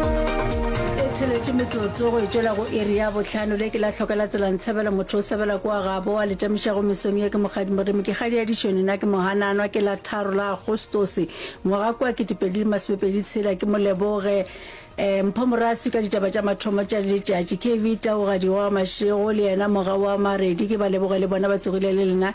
e tsheletše metsotso go etšwela go iri ya bohlano le ke la hloka la tsela ntshebela motho o sebela ko a gabo a letamišago mesong ye ke mokgadi moremi ke kgadi ya dišone na ke mohananwa ke la tharo la agostose ngwaga kwa ketepedi le masomepedi tshela ke moleboge um mpho morasi ka ditaba tša mathomo tša letšatši kv taogadioa mašego le yena moga wa maredi ke ba leboge le bona ba tsogile le lena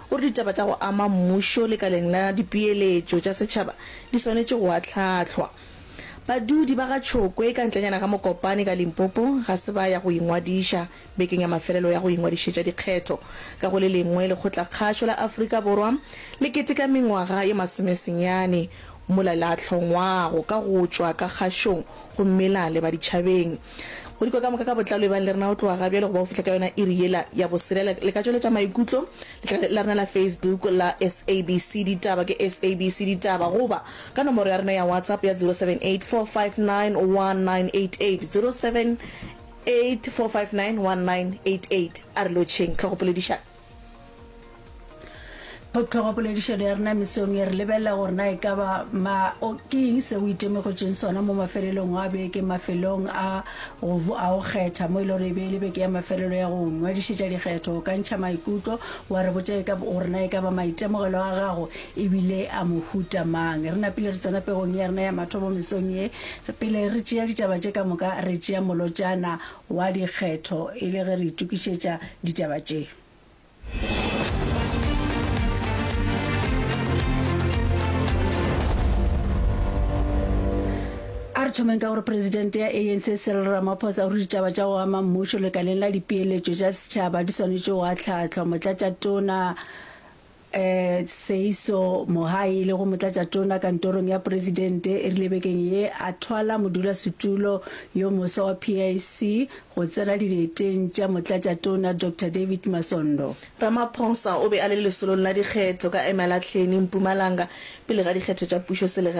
O re ditaba tša go ama mmušo lekaleng la dipeeletšo tša setšhaba di swanetše go ahlahlwa. Badudi ba ga Tšhokwe ka ntlenyana ga Mokopane ka Limpopo ga se ba ya go ingwadiša bekeng ya mafelelo ya go ingwadišetša dikgetho ka go le lengwe lekgotlakgašo la Afrika Borwa le keteka mengwaga ye masomesenyane mola le ahlongwago ka go tšwa ka kgašong gomme la leba ditšhabeng Go dikwa ka moka ka botlalo e bang le rena o tloga ga bjale go ba go fihla ka yona iri yela ya bosele. Le, le ka tšweletša maikutlo letlale la rena la Facebook la SABC Ditaba ke SABC Ditaba goba ka nomoro ya rena ya WhatsApp ya 0784591988, 0784591988. A re lotšheng tlhogopoledišano. Potlhogopoledišano ya rena mesong e re lebelela gore na e ka ba ma o ke eng se o itemogetseng sona mo mafelelong a beke mafelong a go vo- a go kgetha mo e le gore e be e le beke ya mafelelo ya go ngwadišetša dikgetho o ka ntšha maikutlo wa re botša e ka b- gore na e ka ba maitemogelo a gago ebile a mohuta mang re napile re tsena pegong ya rena ya mathomo mesong ye pele re tšea ditaba tše ka moka re tšea molotšana Wa dikgetho e le ge re itokišetša ditaba tše. A re thomeng ka gore Presidente ya ANC Cyril Ramaphosa o re ditaba tša go ama mmušo lekaleng la dipeeletšo tša setšhaba di swanetše go ahlahlwa. Motlatšatona Tshehiso Mohahi le go Motlatšatona kantorong ya Poresidente e rile bekeng ye a thwala modulasetulo yo moswa wa PIC go tsena dieteng tša Motlatšatona Doctor David Masondo. Ramaphosa o be a le lesolong la dikgetho ka Emalahleni, Mpumalanga, pele ga dikgetho tša pušo selegaeng.